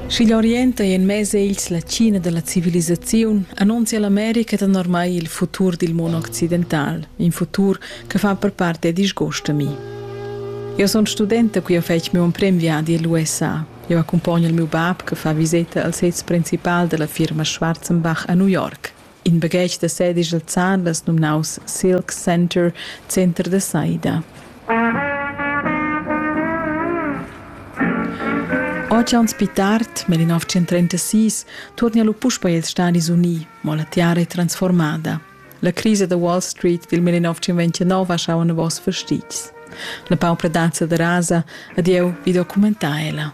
Sch'igl orient ei en mez egls la China dalla civilisaziun, annunzia l'America danormai il futur dil mon occidental, in futur che fa per part è disgust a mi. Eu sun studenta qui ho fetg miu emprem viadi a l'USA. Eu accumpogno il miu bab che fa viseta al sez principal della firma Schwarzenbach a New York. In baghetg da sedigl zan las numnaus Silk Center, Center da saida. Oceans pi tard, nel 1936, torna lu puspa ils Stadis Uni, mo la tiara è transformada. La crisi da Wall Street dil 1929 ha schau novos fastitgs. La paupradazza da rasa, adieu, vi documentar ella.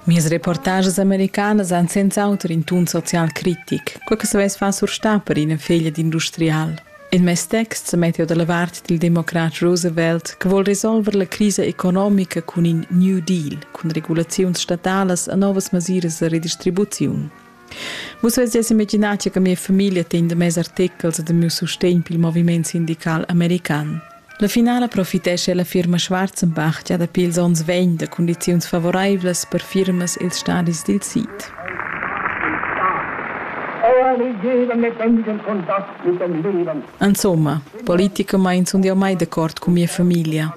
Mias reportages americanas han senz'auter in tun social critic, quei che savess far surstar per ina feglia d'industrial. In mes text sa metta da la vart dil democrat Roosevelt che vuol resolver la crisa economica cun in New Deal, cun regulaziuns statalas e novas masiras da redistribuziun. Vus vesies imaginar che mia famiglia tegn de mes artechels e de miu sustegn pil moviment sindical american. La finala profitescha la firma Schwarzenbach gia dapi ils onns vegn da condiziuns favoreivlas per firmas ils stadis dil sid. Insomma, politicamain sun jau mai d'accord cun mia famiglia.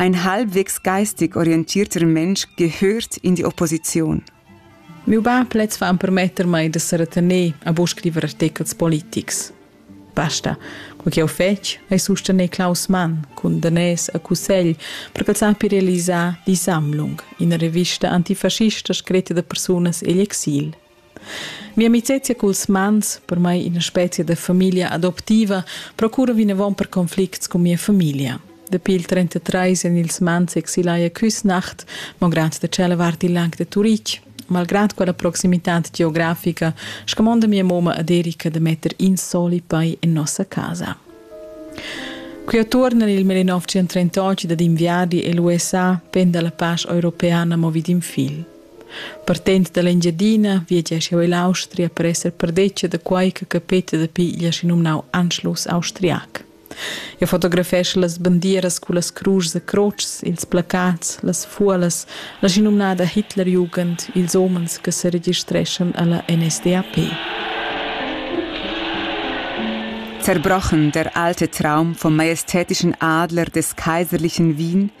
Ein halbwegs geistig orientiert remensch gehört in die Opposition. Miu bab lez va empermetter mei da seretener a buca scriver artechels politics. Basta, quei che ho fetg ei sustener Klaus Mann cun danès a cussegl per ch'el sappi realisar Die Sammlung, ina revista antifascista scritta da persunas egl exil. Mia amicezia culs mans, per mai ina spezia da famiglia adoptiva, procura vinavon per conflicts cun mia famiglia. Dapi il 33 en ils mans exilaia Küsnacht, malgrad da cela vart il lag de Turitg. Malgrad quella proximitad geografica, scamonda mia moma ad Erika da metter in soli pei en nossa casa. Qui attuorna nel 1938 dad inviargli e l'USA penda la pace europeana movi d'in fil. Partend dall'Engiadina viagia schau ell'Austria per esser perdetga da quei che capeta dapi igl aschi numnau Anschluss austriac. Eu fotografescha las bandieras cu las cruschs e crotschs, ils placats, las fuolas, la schinumnada Hitlerjugend, ils homens che se registreschan alla NSDAP. Zerbrochen der alte Traum vom majestätischen Adler des kaiserlichen Wien –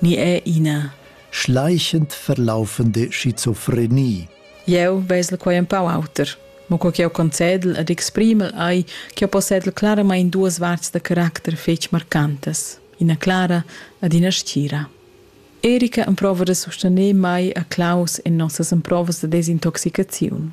ni è ina schleichend verlaufende schizophrenie. Eu vesel quai un pau auter. Mo co ch'eu concedel ed exprimel ei ch'eu possedel claramain duas varts da caracter fetg marcantas, ina clara ed ina stgira. Erika emprova da sustener mai a Klaus en nossas emprovas da desintoxicaziun.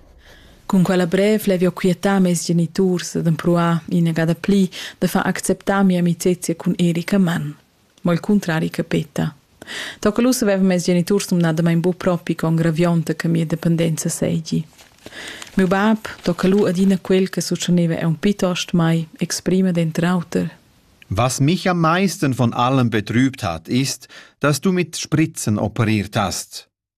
Cun quella brev l'hai viu quietà mes geniturs ed empruar inagada pli da far acceptar mia amicezia cun Erika Mann. Mo il cuntrari che peta. Tocca lu savevan mes geniturs numnadamain buc propi con gravionta che mia dependenza seigi. Miu bab tocca lu adina quel che succhaneva aunc pietost mai, exprima denter auter. Was mich am meisten von allem betrübt hat, ist, dass du mit Spritzen operiert hast.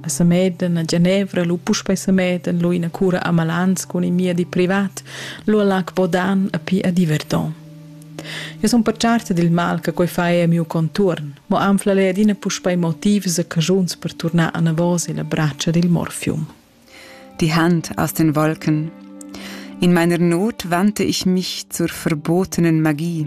a Samedan, a Genevra, lu puspei Samedan, lu ina cura a Malans cun in miedi privat, lu a Lac Bodan a pi a Diverton. Eu sun pertscharta dil mal che quei fa a miu contuorn, mo anfla lei adina puspei motivs e cajuns per turnar anavos illa bratscha dil Morfium. Die Hand aus den Wolken In meiner Not wandte ich mich zur verbotenen Magie